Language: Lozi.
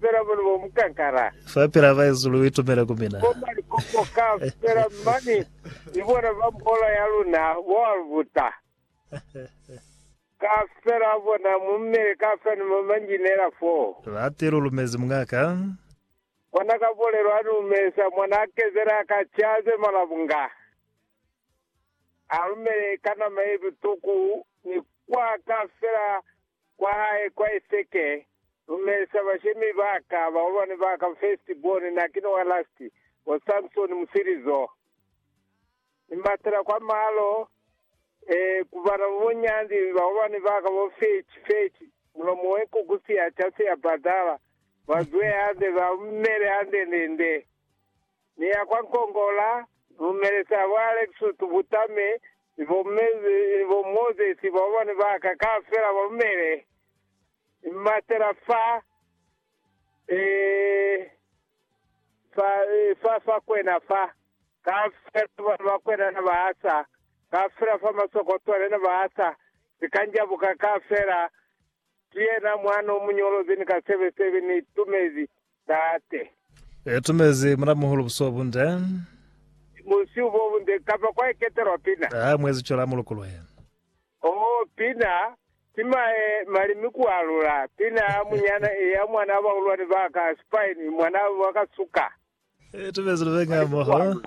fela mani bo mukankala. Fa pila baesu lu itumele ku mina. Bo mani kopo ka fela mani ni bona ba mbola ya luna bo albuta. Ka fela bona mu mele ka fela ni mo manjinela foo. Lati lu lumezi mungaka. Kona ka bolelo ani umesa mwana a kezele a ka caze malabunga. A lumele ka nama ye butuku ni kwa ka fela Kwa hae, kwa Eseke, Lumelisa bashemi ba ka, baholwani ba ka, first born, na ki ni wa last, bo Samsoni musilizo. Ni batela kwa malo, eh, ku bana ba bunyandi, baholwani ba ka, bo Fetch, Fetch, mulomo we nkuku siya, ca siya badala, ba zwe hande, ba mele hande, nde, nde. ni ya kwa Nkongola, lumelisa bo Alexutu Butame ni bo Mezi ni bo Moses ba bana ba ka kaufela ba lumele, ni mmatela fa, eh, fa, eh, fa, fa kwena fa, kaufela bana ba kwena na ba asa, kaufela fa masokotwale na ba asa, sikanjabuka kaufela, ki yena mwana omuñolozi ni ka sebe sebe ni tumezi, Tate. E tumezi Mulamuhulu busihu bunde. Busihu bo bunde, kapa kwa eketelwa pina. A mwezi cwela a mulukuluhe. Oh, pina, tima e mali mi ku alula, pina ya munyana e ya mwana wa bahulwani ba ka, spine, mwana wa ka suka. E tumezi lubenga moho.